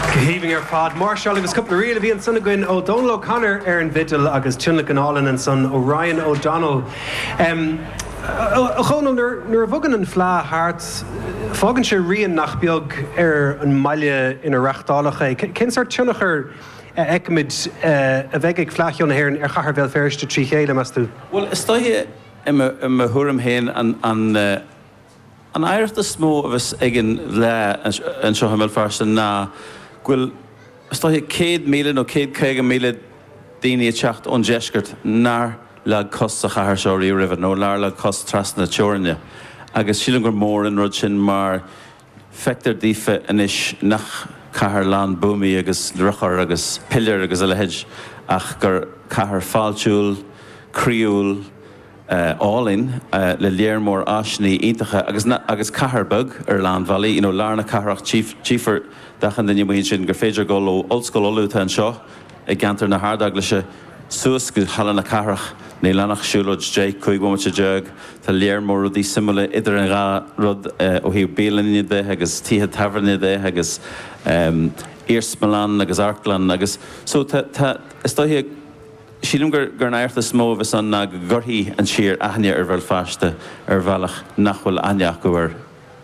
Go haoibhinn ar fad. Máirseáil agus cúpla ríl a bhí ansan againn ó Dónal O'Connor ar an bhfidil agus tionlacan álainn ansan ó Ryan O'Donnell. A Dhónaill, nuair a bhogann an Fleá thart fágann sé rian nach beag ar an mbaile ina reáchtáladh é. Cén sort tionchar a fheicimid a bheidh ag Fleá Cheoil na hÉireann ar Chathair Bhéal Feirste trí chéile, meas tú? Bhuel, is dóiche, i mo thuairim féin, an. An oidhreacht is mó a bheas ag an bhFleadh anseo i mBéal Feirste ná go bhfuil is dóiche 100,000 nó 150,000 daoine ag teacht ón Deisceart nár leag cos sa chathair seo riamh roimhe nó nár leag cos trasna na teorainne agus sílim gur mór an rud sin mar feictear daofa anois nach cathair lán buamaí agus urchar agus piléir agus a leithéid ach gur cathair fáiltiúil, croíúil. álainn le léar mór áiseannaí iontacha agus agus cathair beag ar a lán bealaí you know lár na cathrach tchífear d'achan duine amuigh ansin gur féidir dul ó Ollscoil Uladh atá anseo i gceantar na hArdeaglaise suas go Halla na Cathrach níl ann ach siúlóid deich, cúig bhomaite déag tá léar mór rudaí suimiúla idir an dhá rud ó thaobh bialainne de agus tithe tábhairne de agus iarsmalann agus amharclann agus so tá tá is dóiche Sílim gur an oidhreacht is mó a bheas ann ná go gcuirfidh an tír aithne ar Bhéal Feirste ar bhealach nach bhfuil aithne acu air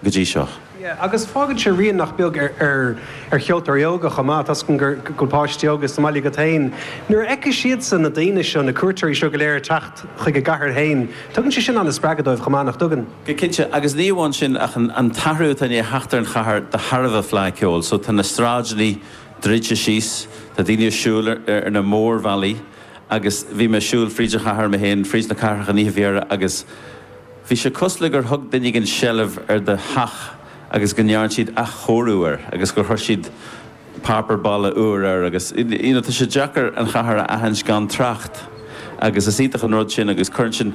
go dtí seo. Yeah agus fágann sé rian nach beag ar cheoltóirí óga chomh maith tá a fhios agam go bhfuil páistí óga sa mbaile agat féin. Nuair a fheicfidh siadsan na daoine seo, na cuairteoirí seo go léir ag teacht chuig a gcathair féin, tugann sé sin an-spreagadh dóibh chomh maith, nach dtugann? Go cinnte, agus ní amháin sin ach an t-athrú atá i ndiaidh theacht ar an chathair de thairbhe Fleadh Ceoil so tá na sráideannaí druidte síos. Tá daoine a' siúl ar na mór-bhealaí agus bhí mé a' siúl fríd an chathair mé féin, fríd na cathrach an oíche faoi dheireadh agus bhí sé cosúil gur thug duine éigin seilbh ar do theach agus go ndearn siad athchóiriú air agus gur chuir siad páipeár balla úr air agus you know tá sé deacair an chathair a aithint gan trácht agus is iontach an rud sin agus cuireann sin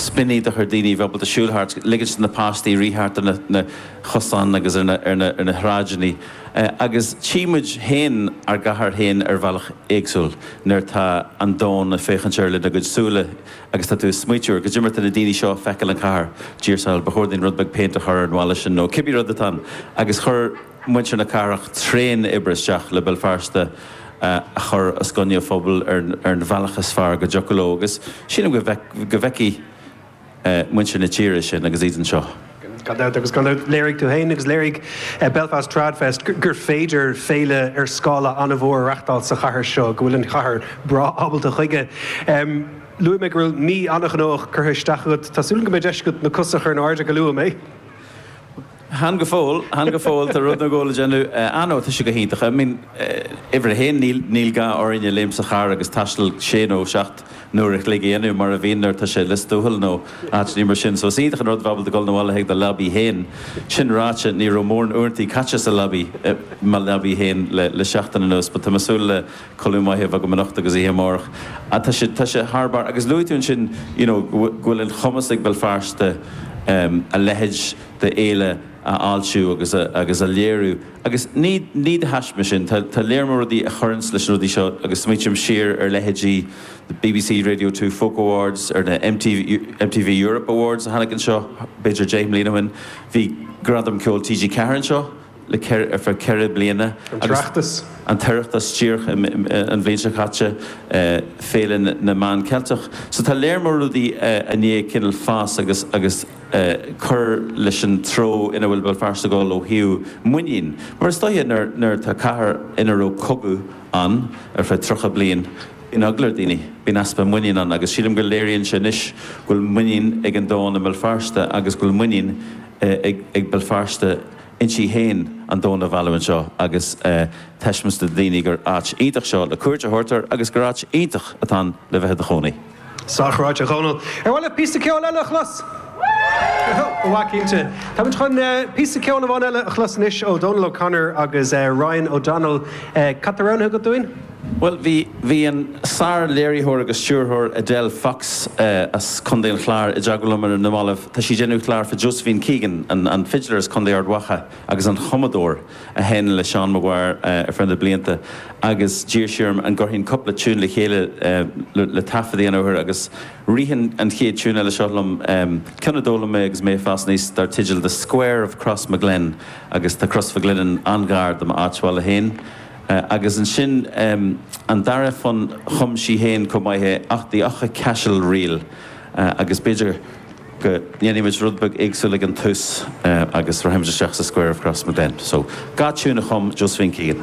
spion iontach ar dhaoine a bheith ábalta siúl thart, ligint do na páistí rith thart ar an chosán agus ar na sráideannaí. Agus tchí muid féin ár gcathair féin ar bhealach éagsúil nuair atá an domhan ag féachaint air lena gcuid súile agus tá tú ag smaoitiú ar cad é mar atá na daoine seo ag feiceáil an chathair, Dia ár sábháil. Ba chóir dúinn rud beag péint a chur ar an bhalla sin nó cibé rud atá ann agus chuir muintir na cathrach tréan oibre isteach le Béal Feirste a chur os coinne an phobail ar an bhealach is fearr go dtiocfadh leo agus sílim go bhfeicfidh muintir na tíre sin agus iad anseo. Gan dabht agus gan dabht léirigh tú féin agus léirigh Belfast TradFest gur féidir féile ar scála an-mhór a reáchtáil sa chathair seo, go bhfuil an chathair breá ábalta chuige. Luaigh mé go raibh mí an-ghnóthach curtha isteach agat. Tá súil agam go mbeidh deis agat na cosa a chur in airde go luath, an mbeidh? Chan go fóill, chan go fóill, tá rud nó dhó le déanamh. Ah no, tá sé go hiontach. I mean, uimhir a haon, níl, níl gá orainne léimt sa charr agus taisteal sé nó seacht n-uair a chloig a dhéanamh mar a bhíonn nuair atá sé i Lios Tuathail nó áiteannaí mar sin. So is iontach an rud a bheith ábalta dul na bhaile chuig do leabaí féin. Sin ráite, ní raibh mórán uaireantaí caite sa leabaí, i mo leabaí féin le, le seachtain anuas but tá mé ag súil le codladh maith a bheith agam anocht agus oíche amárach. Ah tá sé, tá sé thar barr. Agus luaigh tú ansin, you know, go bhfuil, go bhfuil an chumas ag Béal Feirste, em, a leithéid, de fhéile a fháiltiú agus a léiriú. Agus ní de thaisme sin, tá lear mór rudaí a chuireanns leis na rudaí seo agus smaoitím siar ar leithéidí na BBC Radio Two Folk Awards, ar na MTV Europe Awards a tháinig anseo b'fhéidir deich mbliana ó shin. Bhí Gradam Ceoil TG4 anseo le ceithre, ar feadh ceithre bliana Agus an tOireachtas. an tOireachtas díreach an bhliain seo caite, Féile na Meán Ceilteach. So tá lear mór rudaí i ndiaidh cineál fás agus agus cur leis an treo ina bhfuil Béal Feirste ag dul ó thaobh muinín. Mar is dóiche nuair nuair atá cathair ina raibh cogadh ann ar feadh tríocha bliain, bíonn eagla ar dhaoine, bíonn easpa muinín ann agus sílim go léiríonn sé anois go bhfuil muinín ag an domhan i mBéal Feirste agus go bhfuil muinín ag ag Béal Feirste inti féin an domhan a mhealladh anseo agus taispeáint do dhaoine gur áit iontach seo le cuairt a thabhairt air agus gur áit iontach atá ann le bheith i do chónaí. Sách ráite, a Dhónail. Ar mhaith leat píosa ceoil eile a chlos? Ba mhaith cinnte. Táimid chun píosa ceoil amháin eile a chlos anois ó Dhónal O'Connor agus Ryan O'Donnell. Cad tá roghnaithe agat dúinn? Bhuel, bhí, bhí an sár-léiritheoir agus stiúrthóir Edel Fox as Contae an Chláir i dteagmháil liom ar na mallaibh. Tá sí ag déanamh clár fá Josephine Keegan, an, an fidléir as Contae Ard Mhacha agus an chumadóir a sheinn le Seán Maguire ar feadh na blianta agus d'iarr sí orm an gcuirfinn cúpla tiún le chéile le, le taifead a dhéanamh orthu agus rith an chéad tiún eile seo liom, ceann a d'fhoghlaim mé agus mé ag fás aníos dar teideal The Square of Crossmaglen agus tá Crois Mhic Lionnáin an-ghar do m'áit bhaile féin. Agus ansin an dara fonn chum sí féin chomh maith é, ach The Aughacashel Reel, agus b'fhéidir go ndéanfaimid rud beag éagsúil ag an tús agus rachaimid isteach sa Square of Crossmaglen. So, dhá tiún a chum Josephine Keegan.